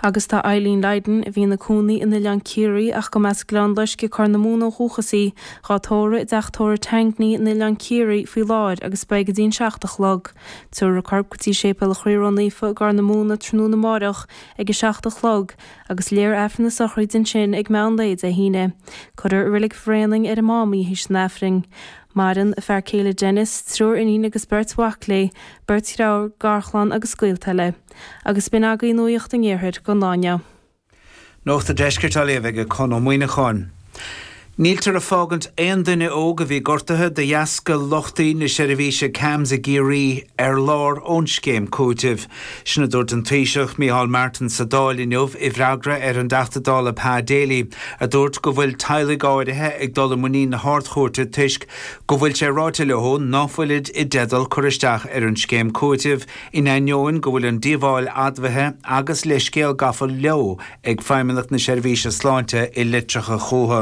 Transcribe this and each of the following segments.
Agus tá Eileen Lydon, a bhí ina cónaí in Oileán Ciarraí ach go mb'as Gleann Loiscthe, Corr na Móna ó dhúchas í, dhá tórramh i dteach tórraimh Tangney in Oileán Ciarraí faoi láthair agus beidh go dtí an seacht a chlog. Tiúrfar a corp go dtí Séipéal an Chroí Ró Naofa i gCorr na Móna tráthnóna amáireach ag a seacht a chlog agus léifear Aifreann na sochraide ansin ag meán lae Dé hAoine. Cuirfear i reilig Bhréanainn ar an Mám í th'éis an Aifrinn. Maireann a fear céile Denis, triúr iníon agus beirt mhac léi, beirt dheirfiúr, garchlann agus gaolta eile. Agus b'in agaibh nuaíocht an iarthair go nuige. Nuacht a' Deiscirt á léamh aige Conn Ó Muíneacháin. Níltear ag fágaint aon duine óg a bhí gortaithe de dheasca lochtaí na seirbhíse CAMHS i gCiarraí ar lár ón scéim cúitimh. Sin a dúirt an Taoiseach, Micheál Martin sa Dáil inniu i bhfreagra ar an dTeachta Dála Pa Daly a dúirt go bhfuil teaghlaigh áirithe ag dul i muinín na hArd-Chúirte toisc go bhfuil sé ráite leo ná fuilid i dteideal cur isteach ar an scéim cúitimh In ainneoin go bhfuil an díobháil admhaithe agus leithscéal gafa leo ag Feidhmeannacht na Seirbhíse Sláinte i litreacha chucu,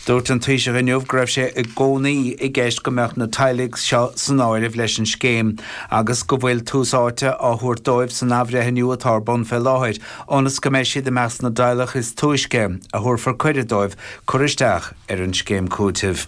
dúirt an Taoiseach inniu go raibh sé i gcónaí i gceist go mbeadh na teaghlaigh seo san áireamh leis an scéim agus go bhfuil tús áite á thabhairt dóibh san athbhreithniú atá ar bun fé láthair ionas go mbeidh siad i measc na dteaghlach is túisce a thabharfar cuireadh dóibh cur isteach ar an scéim cúitimh.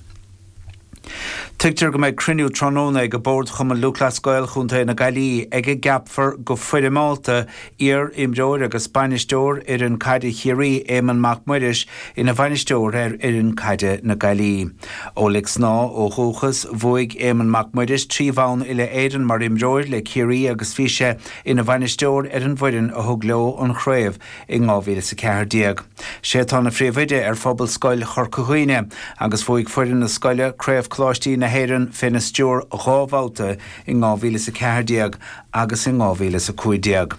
Tuigtear go mbeidh cruinniú tráthnóna ag Bord Chumann Lúthchleas Gael Chontae na Gaillimhe ag a gceapfar go foirmeálta iar imreoir agus bainisteoir fhoireann caide Chiarraí Éamonn Mac Muiris ina bhainisteoir ar fhoireann caide na Gaillimhe. Ó Lic Snámha ó dhúchas, bhuaigh Éamonn Mac Muiris trí bhonn Uile-Éireann mar imreoir le Ciarraí agus bhí sé ina bhainisteoir ar an bhfoireann a thug leo an chraobh in Dhá Mhíle 's a Ceathair Déag. Sé atá ina Phríomhoide ar Phobalscoil Chorca Dhuibhne agus bhuaigh foireann na scoile Craobh Coláistí na hÉireann féna stiúir dhá bhabhta in Dhá Mhíle 's a Ceathair Déag agus in Dhá Mhíle 's a Cúig Déag.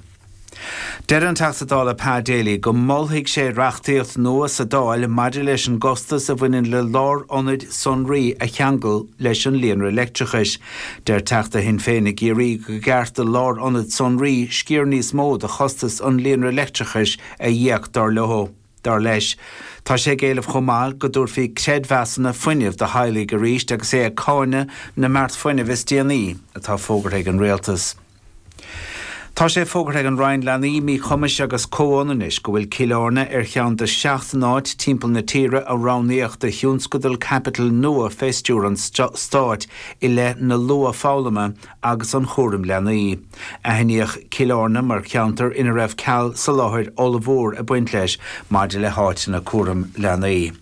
Deir an Teachta Dála Pa Daly go molfaidh sé reachtaíocht nua sa Dáil maidir leis an gcostas a bhaineann le lárionaid sonraí a cheangal leis an líonra leictreachais. Deir Teachta Shinn Féin i gCiarraí go gceart do lárionaid sonraí sciar níos mó de chostas an líonra leictreachais a íoc, dar leo. Dar leis, tá sé ag éileamh chomh maith go dtabharfaí creidmheasanna fuinnimh do theaghlaigh arís agus é ag cáineadh na mbeart fuinnimh is déanaí atá fógartha ag an Rialtas. Tá sé fógartha ag an Roinn Leanaí, Míchumais agus Comhionannais go bhfuil Cill Airne ar cheann de sheacht n-áit timpeall na tíre a roghnaíodh do thionscadal caipitil nua fé stiúir an Stáit i leith na luathfhoghlama agus an chúraim leanaí. Aithníodh Cill Airne mar cheantar ina raibh ceal soláthair ollmhór ag baint leis maidir le háiteanna cúraim leanaí.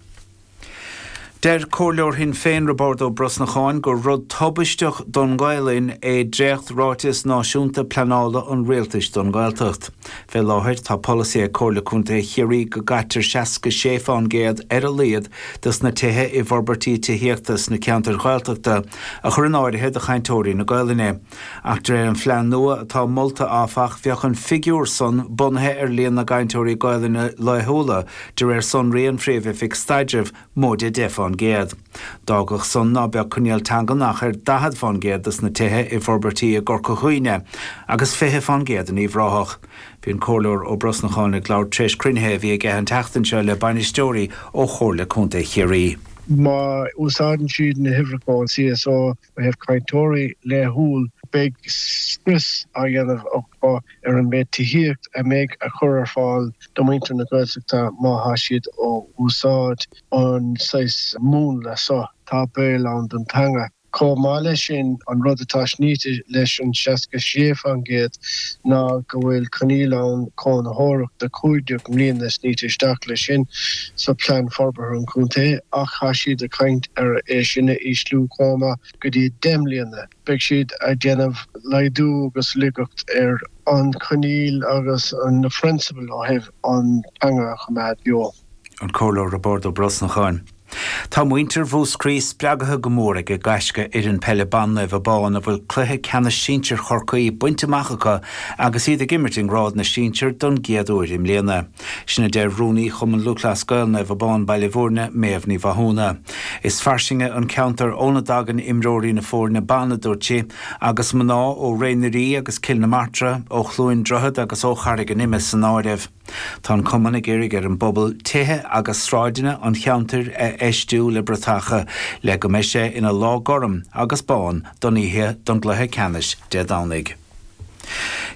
Deir Comhairleoir Shinn Féin Roibeard Ó Brosnacháin gur rud tubaisteach don nGaolainn é dréacht Ráiteas Náisiúnta Pleanála an Rialtais don Ghaeltacht. Fé láthair tá polasaí ag Comhairle Contae Chiarraí go gcaitear 66 fán gcéad ar a laghad dos na tithe i bhforbairtí tithíochta sna ceantair Ghaeltachta a chur in áirithe do chainteoirí na Gaolainne. Ach de réir an phlean nua atá molta, áfach, bheadh an figiúr san bunaithe ar líon na gcainteoirí Gaolainne laethúla de réir sonraí an Phríomh-Oifig Staidrimh, móide 10 fán gcéad. D'fhágfadh san ná beadh coinníoll teangan ach ar 40 fán gcéad dos na tithe i bhforbairtí i gCorca Dhuibhne, agus 20 fán gcéad in Uíbh Ráthach. Bhí an Comhairleoir Ó Brosnacháin ag labhairt tar éis cruinnithe a bhí aige an tseachtain seo le bainisteoirí ó Chomhairle Contae Chiarraí. Má úsáideann siad na huimhreacha ón CSO Ó thaobh cainteoirí laethúil, beidh scrios á dhéanamh acu ar an méid tithíocht a mbeidh á chur ar fáil do muintir na Gaeltachta má thá siad ag úsáid an saghas múnla so. Tá baol ann don teanga. Chomh maith leis sin, an rud atá sníte leis an 66 fán gcéad ná go bhfuil coinníoll ann cónaitheoireacht de 15 mbliana sníte isteach leis sin. sa Plean Forbartha an Chontae ach tá siad ag caint ar é sin a ísliú chomh maith go dtí 10 mbliana. Beidh siad ag déanamh laghdú agus laigeacht ar an choinníoll agus na prionsabail ó thaobh an teanga a choimeád beo. An Comhairleoir Roibeard Ó Brosnacháin. Tá muintir Mhúscraí spreagtha go mór ag gaisce fhoireann peile ban Naomh Abán a bhfuil cluiche ceannais sinsir Chorcaí bainte amach acu agus iad ag imirt i ngrád na sinsear don gcéad uair i mbliana. Sin a deir Rúnaí Chumann Lúthchleas Gael Naomh Abán Baile Bhúirne, Méabh Ní Mhathúna. Is fairsinge an ceantar óna dtagann imreoirí na foirne ban a dúirt sí, agus mná ó Ré na nDoirí agus Cill na Martra, ó Chluain Droichead agus ó Charraig an Ime san áireamh ann. Tá an Cumann ag iarraidh ar an bpobal tithe agus sráideanna an cheantair a fheistiú le bratacha le go mbeidh sé ina lá gorm agus bán don oíche don gcluiche ceannais Dé Domhnaigh.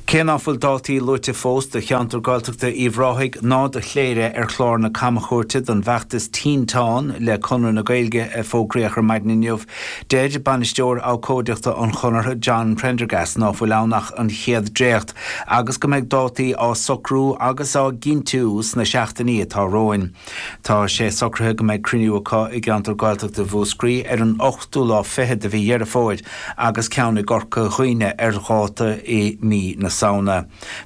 Cé ná fuil dátaí luaite fós do cheantar Gaeltachta Uíbh Ráthaigh ná do Chléire ar chlár na camchuairte don bhfeachtas Tinteán le Conradh na Gaeilge a fógraíodh ar maidin inniu, deir Bainisteoir Abhcóideachta an Chonartha, John Prendergast ná fuil ann ach an chéad dréacht agus go mbeidh dátaí á socrú agus á gcinntiú sna seachtainí atá romhainn. Tá sé socraithe go mbeidh cruinniú acu i gceantar Gaeltachta Mhúscraí ar an ochtú lá fichead de mhí Dheireadh Fómhair agus ceann i gCorca Dhuibhne ar dháta i mí na Samhna.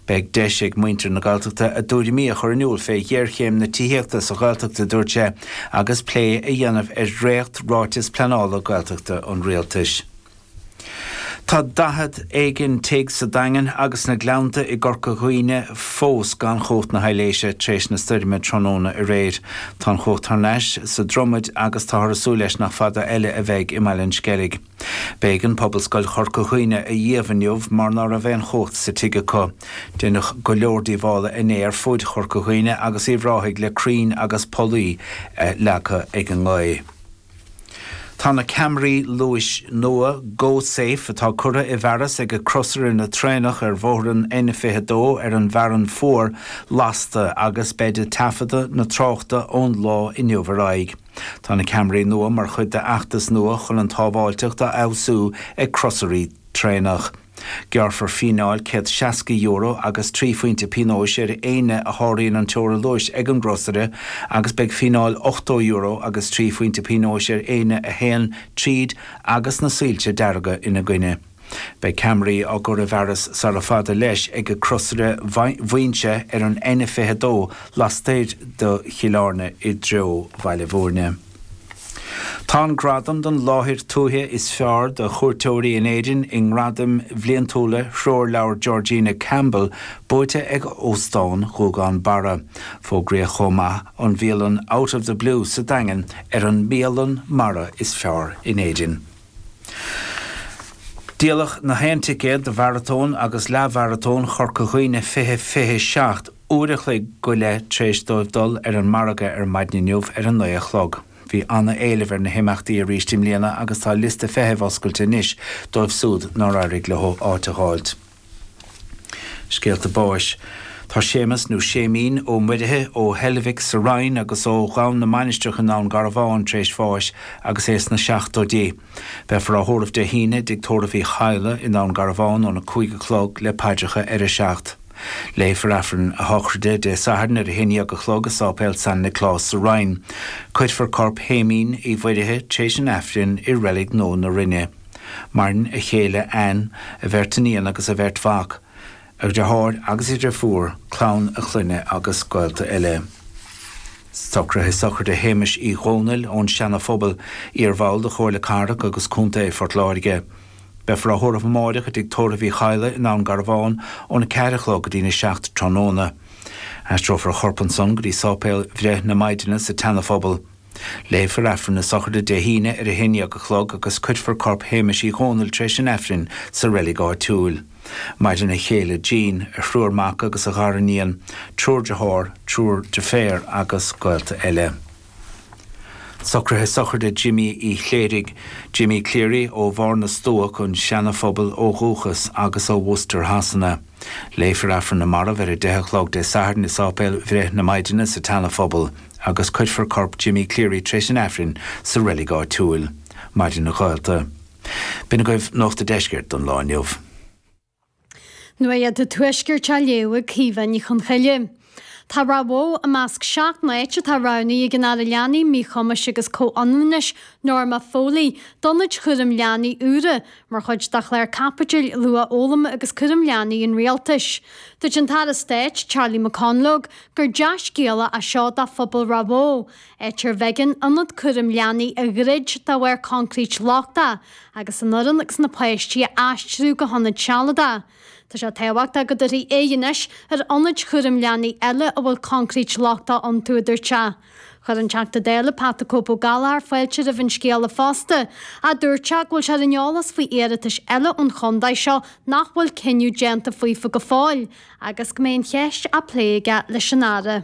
Beidh deis ag muintir na Gaeltachta a dtuairimí a chur in iúl fé ghéarchéim na tithíochta sa Ghaeltacht a dúirt sé agus plé a dhéanamh ar dhréacht ráiteas pleanála Gaeltachta an Rialtais. Tá daichead éigin tigh sa Daingean agus sna Gleannta i gCorca Dhuibhne fós gan chumhacht na haibhléise tar éis na stoirme tráthnóna aréir. Tá an chumhacht thar n-ais sa Dromaid agus táthar ag súil leis nach fada eile a bheidh i mBaile an Sceilg. B'éigean Pobalscoil Chorca Dhuibhne a dh'iamh inniu mar ná raibh aon chumhacht sa tigh acu. Deineadh go leor díobhála inné ar fuaid Chorca Dhuibhne agus Uíbh Ráthaigh le crainn agus pollaí leagtha ag an ngaoth. Tá na ceamaraí luais nua Go Safe atá curtha i bhfearas ag crosaire na traenach ar bhóthar an N22 ar an bhFearann Fuar lasta agus beid ag taifeadadh na tráchta ón lá inniu ar aghaidh. Tá na ceamaraí nua mar chuid d'fheachtas nua chun an tsábháilteacht a fheabhsú ag crosairí traenach. Gearrfar fíneáil €160 agus 3 phointe pionóis ar éinne a sháraíonn an teora luais ag an gcrosaire agus beidh fíneáil €80 agus 3 phointe pionóis ar éinne a théann tríd agus na soilse dearga ina gcoinne. Beidh ceamaraí á gcur i bhfearas sara fada leis ag crosaire Mhaínse ar an N22 lastoir de Chill Airne i dtreo Bhaile Mhúirne. Tá an gradam don láthair tuaithe is fearr do chuairteoirí in Éirinn i nGradaim bhliantúla Threoirleabhar Georgina Campbell buaite ag Óstán Ghuagán Barra. Fógraíodh chomh maith an bhialann Out of the Blue sa Daingean ar an mbialann mara is fearr in Éirinn. Díoladh na haon ticéad do Mharatón agus Leathmharatón Chorca Dhuibhne 2027. uair a chloig go leith tréis dóibh dul ar an margadh ar maidin inniu ar a naoi a chlog. Bhí ana éileamh ar na himeachtaí arís i mbliana agus tá liosta feithimh oscailte anois dóibh súd nár éirigh leo áit a dh'fháilt. Scéalta Báis Tá Séamus, nó Séimín, Ó Muirithe, ó Heilbhic sa Rinn agus ó Dhún na Mainistreach i nDún Garbhán tréis bháis agus é sna seachtóidí. Beifear á thórramh Dé hAoine i dTigh Tórraimh Uí Chadhla i nDún Garbhán óna cúig a chlog le paidreacha ar a seacht. Léifear Aifreann a Shochraide Dé Sathairn ar a haon dhéag a chlog i Sáipéal San Nioclás sa Rinn. Cuirfear corp Shéimín Uí Mhuirithe t'éis an Aifrinn i Reilig Nua na Rinne. Maireann a chéile Anne, a bheirt iníon agus a bheirt mhac. a dhriotháir agus a dhriofúr, clann a chlainne agus gaolta eile. Socruithe sochraide Shéamais Uí Dhomhnaill ón Seana Phobal, iar bhall de Chomhairle Cathrach agus Contae Phort Láirge. Beifear á thórramh amáireach i dTigh Tórraimh Uí Chadhla i nDún Garbhán ón 4 a chlog go dtí'n 7 tráthnóna. Aistreofar a chorp ansan go dtí sáipéal Bhreith na Maighdine sa tSeana Phobal. Léifear Aifreann na Sochraide Dé hAoine ar a haon dhéag a chlog agus cuirfear corp Shéamais Uí Dhónaill tar éis an Aifrinn sa reilig áitiúil. Maireann a chéile Jean, a thriúr mac agus a ghar-iníon, triúr dearthár, triúr deirféar agus gaolta eile. Socraithe Sochraide Jimí Uí Chléirigh, Jimmy Cleary, ó Bharr na Stuac, an Seana Phobail ó dhúchas agus ó Worcester Shasana. Léifear Aifreann na Marbh ar a deich a chlog Dé Sathairn i Sáipéal Bhreith na Maighdine sa tSeana Phobal. agus cuirfear corp Jimmy Cleary tar éis an Aifrinn sa reilig áitiúil. Maireann gaolta. B'in agaibh Nuacht a' Deiscirt don lá inniu. Nuacht a' Tuaiscirt á léamh ag Caoimhe Ní Chonchoille. Tá Ráth Bhoth i measc seacht n-áit atá roghnaithe ag an Aire Leanaí, Míchumais agus Comhionannais, Norma Foley, d'ionaid chúraim leanaí úra, Mar chuid dá chlár caipitil luathfhoghlaim agus cúraim leanaí an rialtais. Dúirt an tAire Stáit, Charlie McConalogue, gur dea-scéala é seo do phobal Ráth Bhoth, áit arbh éigean ionad cúraim leanaí a dhruid de bharr concrete lochtach, agus an fhoireann agus na páistí a aistriú go hionad sealadach. Tá sé tábhachtach go dtabharfaí aghaidh anois ar ionaid chúraim leanaí eile a bhfuil concrete lochtach iontu, a dúirt sé. Chuir an Teachta Dála Pat the Cope Ó Gallchóir fáilte roimh an scéala fosta, ach dúirt go bhfuil sé ar an eolas faoi iarratais eile ón chontae seo nach bhfuil cinneadh déanta faofa go fóill agus go mbeidh an cheist á plé aige leis an Aire.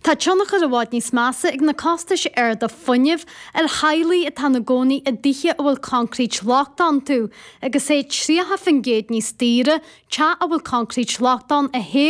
Tá tionchar i bhfad níos measa ag na costais arda fuinnimh ar theaghlaigh atá ina gcónaí i dtithe a bhfuil concrete lochtach iontu, agus é 30% níos daoire teach a bhfuil concrete lochtach ann a